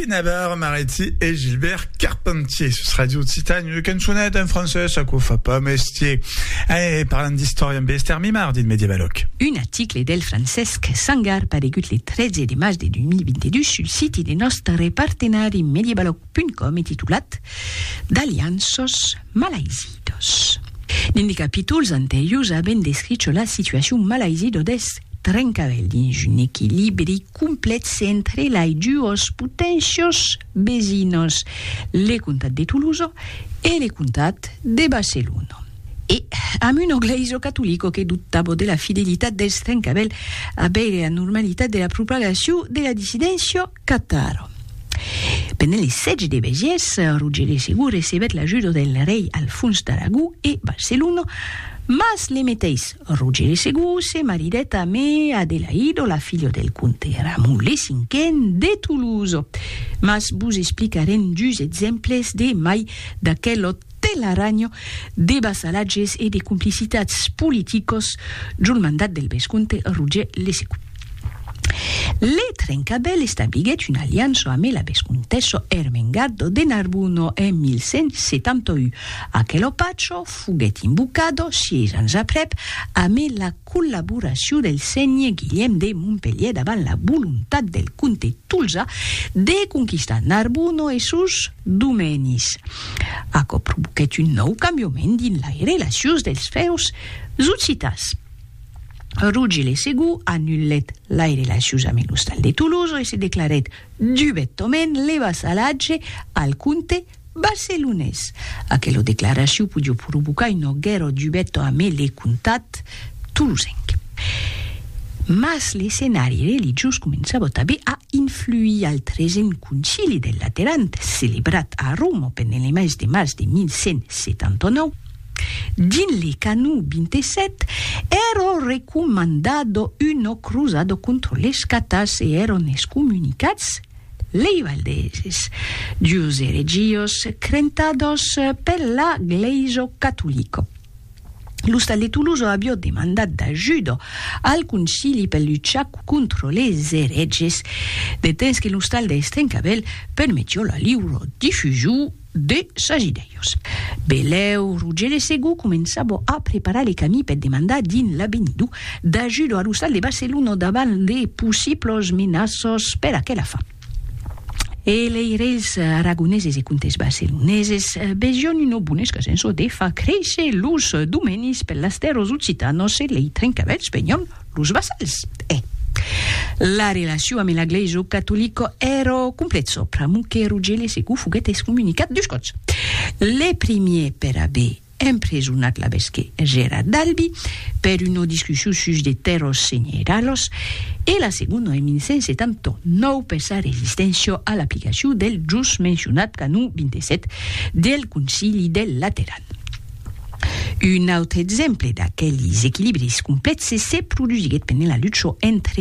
Benabar Maretti e Gilbert Carpentier sus Radio Occitane. Une cançoneta en francés, ça qu'on fa pas mestier. Eh, parlant d'història amb Esther Mimard, dit medievaloc. Un article del Francesc Sangar paregut le 13 de març de 2022 sul siti de nòstre partenari medievaloc.com e titulat D'alianços malaizidos. Dins de capítols anteriors avèm descricho la situacion malaizido deth Trencavèl dins un equilibri complètz entre lai duos potencios vesinos, le comtat de Toulouse e le comtat de Barcelona. E amb una glèisa catolica que dubtava de la fidelitat dels Trencavèl abèr era normalitat de la propagacion de la dissidéncia Cataro. Pendent li sètge de Besiers, Roger de Segur recebèt l'ajuda del rei Alfons d'Aragó e Barcelona, mas le meteis Roger de Segur se maridèt amé Adelaido, la filha del comte Ramon le Cinquen de Tolosa. Mas vos explicarem dus exemples de mai d'aquel òt Telaranho de vassalatges e de complicitats politicos jol mandat del vescomte Roger Lesecu. Le Trencabèl establiguèt una aliança amé la vescomtessa Ermengarda de Narbona en 1171. Aquelo pacho foguèt invocado sièis ans aprèp amé la. collaboracion del sénher Guilhèm de Montpelhièr davant la volontat del comte Tolzà de conquistar Narbonne e sos domènis. Aquò provoquèt un nòu cambiament dins lai relacions dels fèus occitans. Roger le Segond anulèt lai relacions amb l'ostal de Tolosa e se declarèt dubetament le vassalatge al comte Barcelonés. Aquelo declaraciu podió provocar un auguèro dubèt amé le comtat tolosenc. Mas l'escenari religiós començava tabé a influir al tresen Concili del Lateran, celebrat a Roma pendent le mes de març de 1179. Dins le canó 27, èro recomandado uno cruzado contra les catars e èron excomunicats. Lei Valdeses, dus eregios crentados per la Gleiso Catolico. L'Ostal de Tuluzo abió demandat d'ajudo al Concili per luchar contro les ereges, de temps que l'Ostal de Estrencavèl permetió la liuro difusion de Sagidèius. Belèu, Roger de Segú començava a preparar le camí per demandar dins l'Abenidú d'ajuda a lo stat de Barcelona davant de possiblos menaços per aquela fin. E lei reis aragoneses e comtes barceloneses vesión una bona escasença de far créisser los domenis per las tèrras occitanas e lei trencavèlhs venión Los vassals, e. La relacion ame la glaiso catolico ero complet so pr'amo que Rogele Secu foguet escomunicat dus cots. Le primier per abe empresonat l'abesque Gera d'Albi per uno discussion sus de tèrros senheralos e la segono en 1179 per sa resistèncio a l'aplicacion del jos mencionat canon 27 del Concili del Lateran. Un autre exemple d'aquelis equilibris complèxes se produsiguèt pendent la lucha entre